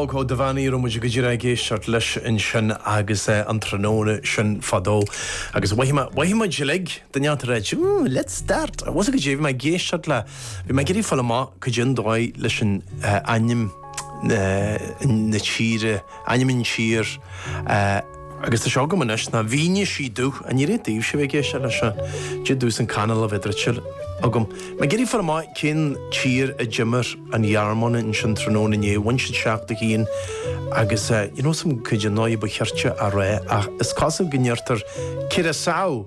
Aodh Ó Duibheannaigh, a raibh muid go díreach ag éisteacht leis ansin agus é an tráthnóna sin fadó? Agus mhothaigh mé, mhothaigh muid uilig, duine eile ag ráit, Ooh, let's start! Bhfuil 'fhios a'd cad é, bhí mé ag éisteacht le, bhí mé ag iarraidh fáil amach cad é an dóigh leis an ainm na tíre, ainm an tír, Agus tá sé agam anois, ná mhínigh sí domh an oiread daoibhse a bheidh ag éisteacht leis seo, i ndiaidh domhsa an canal a bheith druidte agam. Mé ag iarraidh fáil amach, cén tír a d'imir an Ghearmáin ansin tráthnóna inné? Bhain siad seacht a haon agus, ní raibh 'fhios a'm cad é an dóigh a ba chirte a rá ach is cosúil go ndeirtear Curaçao!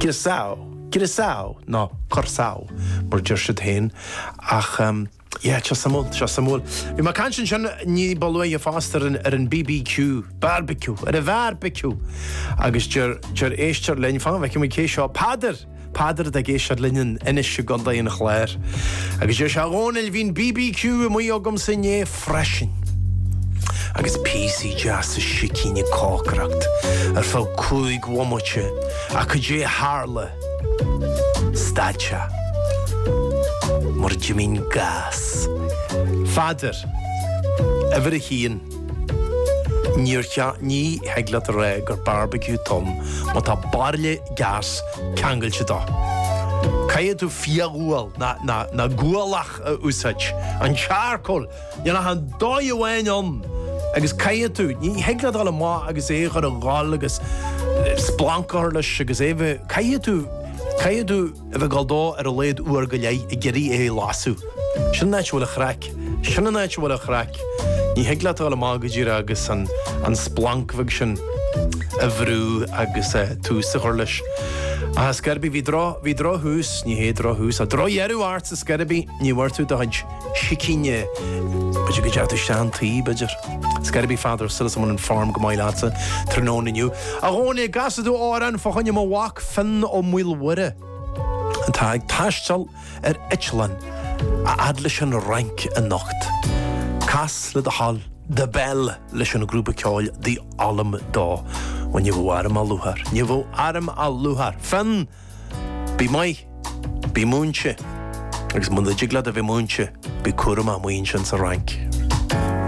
Curaçao, Curaçao, ná Corsau, mar a deir siad féin, ach yeah, seo suimiúil, seo suimiúil. Bhí mé ag caint ansin ní ba luaithe fosta ar an BBQ, Barbecue, ar an bharbiciú, agus deir, deir éisteoir linn, fan go bhfeice mé cé é seo, Peadar! Peadar atá ag éisteacht linn anois i gcontae an Chláir. Agus deir sé, A Dhónaill, bhí an BBQ amuigh agamsa inné. freisin. Agus píosaí deasa sicín ag cócaireacht ar feadh cúig bhomaite, ach cad é a tharla? Stad sé. Mar d'imigh an gás. Pheadair, uimhir a haon, níor cheart, ní thig leat a rá gur barbecue atá ann má tá bairille gás ceangailte dó. Caithfidh tú fioghual, ná gualach! a úsáid. An charcoal, níl ach an dóigh amháin ann agus caithfidh tú, ní thig leat dul amach agus é a chur a dhul agus splanc a chur leis agus é a bheith, caithfidh tú, caithfidh tú a bheith ag dul dó ar a laghad uair go leith ag iarraidh é a lasadh. Sin an áit a bhfuil an chraic, sin an áit a bhfuil an chraic. Ní thig leat dul amach go dtí agus an, an splanc bheag sin a bhrú agus eh, tús a chur leis. Ach ar scor ar bith bhí droch, bhí drochthús, ní hé drochthús, ach drochdheireadh air Ar scor ar bith, ní bhfuair tú do chuid sicíní. B'fhéidir go dteachaidh tú isteach chun tí, b'fhéidir. Ar scor ar bith, a Pheadair, súil agamsa go bhfuil an form go maith leatsa tráthnóna inniu. A Dhónaill, an gcasfaidh tú amhrán fá choinne mo mhac Finn Ó Maoilmhuire atá ag taisteal ar eitleán a fhad leis an Fhrainc anocht. Cas le do thoil The Bell leis an grúpa ceoil The Ollam dó. Bhuel, ní bheidh orm ach lúcháir. Ní bheidh orm ach lúcháir. Finn! Bí maith. Bí múinte. Agus muna dtig leat a bheith múinte, bí cúramach, amuigh ansin sa Fhrainc.